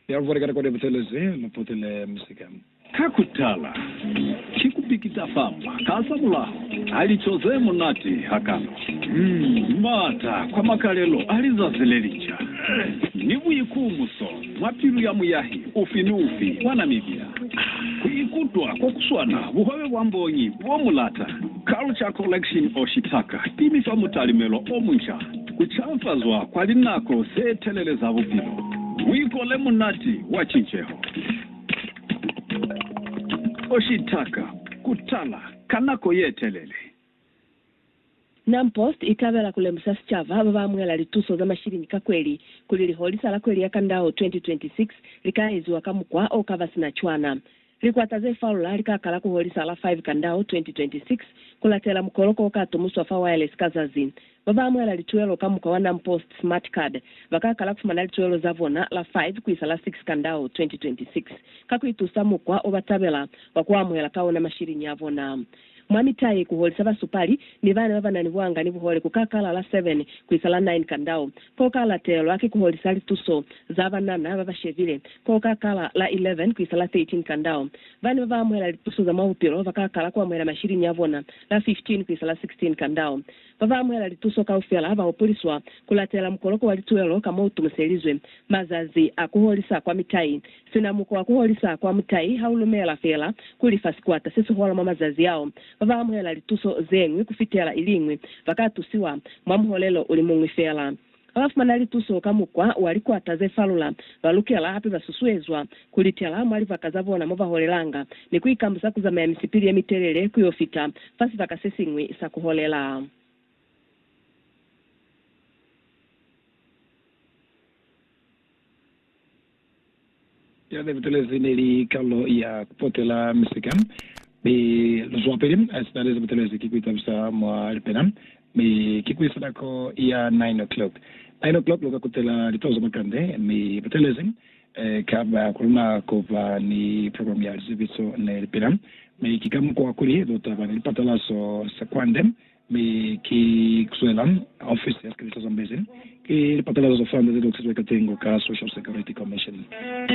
Ya vwali ka nako nebutelezi, muputile musika. Ka kutala, ki kupikita famba ka za mulaho a lico ze munati hakana, maata kwa makalelo a lizazi le linca, ni buikumuso mwa pilu ya muyahi ufi ni ufi wa Namibia. Ku ikutwa ko kuswana buhwebe bwa mbongi bo mulata, Culture Collection Oshitaka, pimi fa mutalimelo o munca. Ku caafazwa kwa linako ze telele za bupilo, muiko le munati wa cinceho, o shitaka ku tala ka nako ye telele. Nam Post i tabela ku lemusa sicaba ba ba amuhela lituso za mashilingi ka kweli kuli liholisa la kweli ya Kandao 2026 li ka eziwa ka mukwa o ka ba sina cwana. Likwata ze falula li ka kala ku holisa la 5 Kandau 2026 ku latela mukoloko o ka tumuswa fa wireless ka za Zin. Ba ba amuhela lituhelo ka mukwa wa NamPost Smart Card ba ka kala ku fumana lituhelo za bona la 5 ku isa la 6 Kandau 2026 ka ku itusa mukwa o ba tabela wa ku amuhela ka ona mashilini a bona. Mwa mitayi, ku holisa basupali ni bana ba ba na ni buanga ni buhole ku ka kala la 7 ku isa la 9 ka ndau. Ko ka latelwa ki ku holisa lituso za banana ba ba shebile, ko ka kala la 11 ku isa la 13 ka ndau. Bana ba ba amuhela lituso za mwa bupilo ba ka kala ku amuhela mashiliñi a bona la 15 ku isa la 16 ka ndau. Ba ba amuhela lituso kaufela ba hupuliswa ku latela mukoloko wa lituelo ka mo u tumuselizwe. Mazazi a ku holisa kwa mitayi Sina mukwa kuholisa kwa mutai ha u lumela fela kuli fa sikwata se si hola mwa mazazi ao, ba ba amuhela lituso ze ñwi ku fitela ili ñwi ba ka tusiwa mwa muholelo u li muñwi fela. Ba ba fumana lituso ka mukwa wa likwata ze falula ba lukela hape ba susuezwa ku litela mwa libaka za bona mo ba holelanga ni ku ikambusa ku zamaya misipili ye mitelele ku yo fita fa sibaka se siñwi sa ku holela. Ya ne butelezi ne li kalulo ya Kupotela Misika, mi luzwapili a sina lezi butelezi ki kuitabisa mwa lipena, mi ki kuisa nako ya nine o'clock. Nine o'clock luka kutela litoho za makande, mi butelezi kaba kuluna kuba ni program ya lizebiso ne lipena, mi ki ka mukwa kuli lutaba ni lipatalazo sa kwande Mi ki kuzwela ofisi ya sikebisa Zambezi, ki lipapelelo za France ze loksizwe ka tengo ka Social Security Commission.